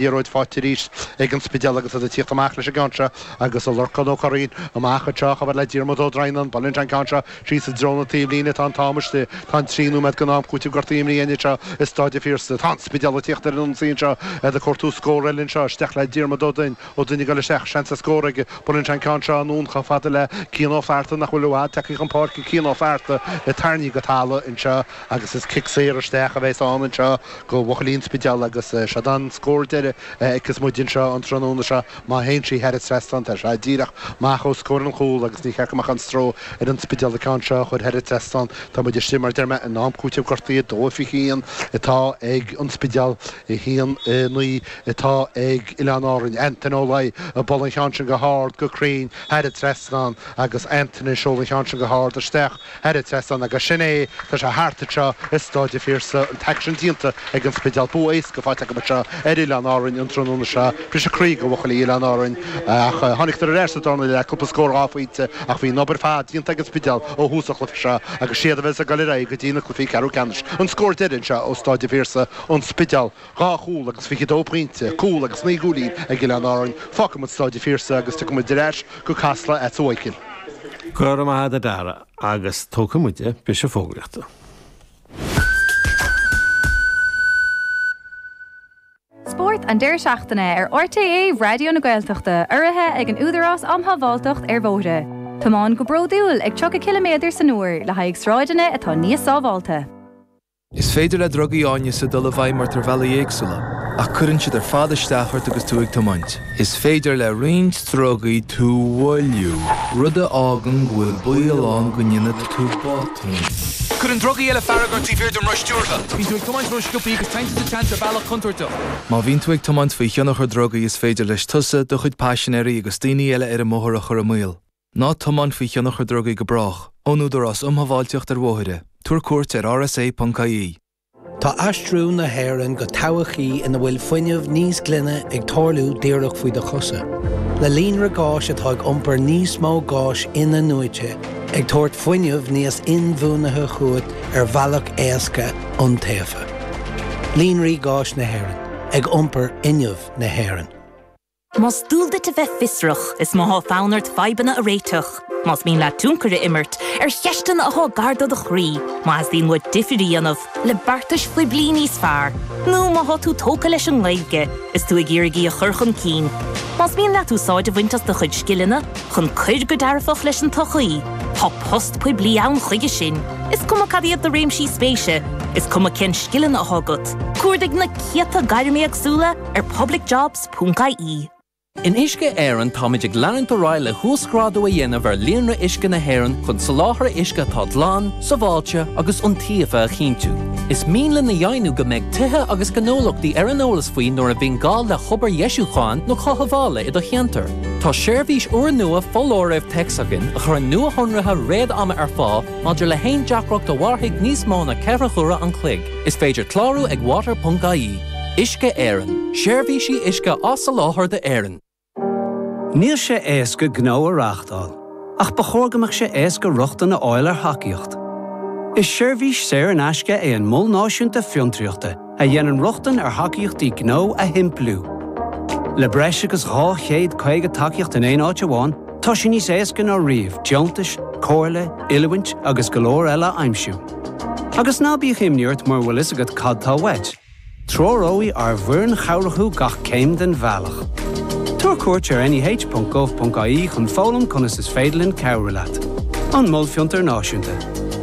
liathróid fáighte arís ag an Spidéal agus iad ag tíocht amach leis an gceann seo agus ó Lorcán Ó Curraoin amach anseo a chabhair le Diarmuid Ó Droighneán. Buaileann sé an ceann seo síos i dtreo na taobhlíne. Tá an t-am istigh. Tá an trí nóiméad den am cúitimh gortaithe imithe againn anseo i Stáid an Phiarsaigh. Tá an Spidéal ag tíocht ar an ionsaí anseo. Iad ag cuartú scór eile anseo. Isteach le Diarmuid Ó Duinn. Ó Duinn ag dul isteach. Seans ar scór aige. Buaileann sé an ceann seo anonn chomh fada le Cian Ó Fearta nach bhfuil i bhfad tagthaí chun páirce Cian Ó Fearta tarraingthí go talamh anseo agus is cic saor isteach a bheas ann anseo. go bhuachaillí an Spidéil agus seod an scór deiridh a fheiceas muid anseo an tráthnóna seo má théann sí thar an trasnán tá sé díreach amach os comhair an chúil agus ní ceart go mbeadh aon stró ar an Spidéal an ceann seo a chur thar an trasnán tá muid istigh mar a deir mé in am cúiteamh gortaithe 2:21 atá ag an Spidéal 1:09 atá ag Oileán Árainn Antaine Ó Laoi ag bualadh an cheann sin go hard go cruinn thar an trasnán agus Antaine ag seoladh an cheann sin go hard isteach thar an trasnán agus sin é tá sé thart anseo i Stáid a' Phiarsaigh an t-aicsean déanta ag an Spidéal. Bua éasca faighte acub anseo ar Oileán Árainn an tráthnóna seo. Briseadh croí go bhuachaillí Oileán Árainn ach tháinigdar ar ais sa dara leath, cúpla scór dhá phointe ach bhí an obair ar fad déanta ag an Spidéal ó thús an chluiche seo agus siad a bheas ag dul ar aghaidh go dtí na cluifí ceathrú ceannais. An scór deiridh anseo ó Stáid a' Phiarsaigh, An Spidéal. Dhá chúl agus fiche dó pointe, cúl agus naoi gcúilín ag Oileán Árainn. Fágfaidh muid Stáid an Phiarsaigh agus tiocfaidh muid ar ais go Casla agatsa a Mhaidhcil. Go raibh maith agat a Dara agus tógfaidh muide briseadh fógraíochta. Spórt an deireadh seachtaine ar RTÉ Raidió na Gaeltachta urraithe ag an Údarás um Shábháilteacht ar Bhóithre. Tiomáin go bródúil ag 30 ciliméadar san uair le haghaidh sráideanna atá níos sábháilte. Is féidir le drugaí áineasa dul i bhfeidhm ort ar bhealaí éagsúla, ach cuireann siad ar fad isteach ort agus tú ag tiomáint. Is féidir le roinnt drugaí tú a mhoilliú, rud a fhágann go bhfuil baol ann go ndéanfaidh tú botúin. Cuireann drugaí eile fearg ort taobh thiar den roth stiúrtha. Bíonn tú ag tiomáint ró-sciobthaí agus téann tú sa tseans ar bhealach contúirteach. Má bhíonn tú ag tiomáint faoi thionchar drugaí is féidir leis tusa, do chuid paisinéirí agus daoine eile ar an mbóthar a chur i mbaol. Ná tiomáin faoi thionchar drugaí go brách. Ón Údarás Um Shábháilteacht ar Bhóithre. Tabhair cuairt ar rsa.ie. Tá aistriú na hÉireann go todhchaí ina bhfuil fuinneamh níos glaine ag tarlú díreach faoi do chosa. Le líonra gáis atá ag iompar níos mó gáis in-athnuaite, ag tabhairt fuinneamh níos inbhuanaithe chugat ar bhealach éasca, iontaofa. Líonraí Gáis Éireann. Ag iompar fhuinneamh na hÉireann. Más dual duit a bheith fiosrach, is má thá fonn ort fadhbanna a réiteach, más mian leat tionchar a imirt ar cheisteanna athá gar do do chroí, má theastaíonn uait difir a dhéanamh le beartais phoiblí níos fearr, nó má thá tú tógtha leis an nGaeilge is tú ag iarraidh í a chur chun cinn, más mian leat úsáid a bhaint as do chuid scileanna chun cur go dearfach leis an tsochaí, tá post poiblí ann chuige sin, is cuma cad iad do réimsí spéise, is cuma cén scileanna athá agat. Cuardaigh na céadta gairm éagsúla ar Public Jobs. ponc ie. In Uisce Éireann táimid ag leanúint ar aghaidh le huasghrádú a dhéanamh ar líonra uisce na hÉireann chun soláthar uisce atá glan, sábháilte agus iontaofa a chinntiú. Is mian linn a dheimhniú go mbeidh tithe agus gnólachtaí ar an eolas faoi nuair a bhíonn gá le hobair dheisiúcháin nó chothabhála i do cheantar. Tá seirbhís úrnua foláirimh téacs againn a chuireann nuashonruithe réad-ama ar fáil maidir le haon deacracht a mhairfidh níos mó ná ceithre huaire an chloig. Is féidir clárú ag water.ie. Uisce Éireann, Seirbhísí uisce á soláthar d'Éirinn. Níl sé éasca gnó a reáchtáil, ach ba chóir go mbeadh sé éasca rochtain a fháil ar thacaíocht. Is seirbhís saor in aisce é an Mol Náisiúnta Fiontraíochta a dhéanann rochtain ar thacaíochtaí gnó a shimpliú. Le breis agus 250 tacaíocht in aon áit amháin, tá sé níos éasca ná riamh deontais, comhairle, oiliúint agus go leor eile a aimsiú. Agus ná bíodh imní ort mura bhfuil a fhios agat cad tá uait, treoróidh ár bhfoireann chabhrach thú gach céim den bhealach. Tabhair cuairt ar neh.gov.ie chun foghlaim conas is féidir linn cabhrú leat. An Mol Fiontair Náisiúnta.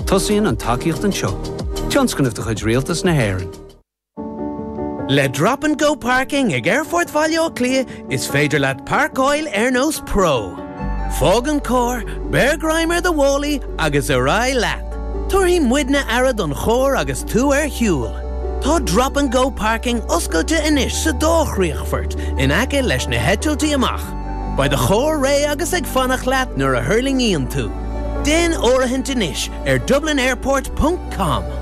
Tosaíonn an tacaíocht anseo. Tionscnamh de chuid Rialtas na hÉireann. Le Drop and Go Parking ag Aerfort Bhaile Átha Cliath is féidir leat parcáil ar nós pro. Fág an carr, beir greim ar do mhálaí agus ar aghaidh leat. Tabharfaidh muidne aire don charr agus tú ar shiúl. Tá Drop and Go Parking oscailte anois sa dá chríochfort in aice leis na heitiltí amach. Beidh do charr réidh agus ag fanacht leat nuair a thuirlingíonn tú. Déan áirithint anois ar dublinairport.com.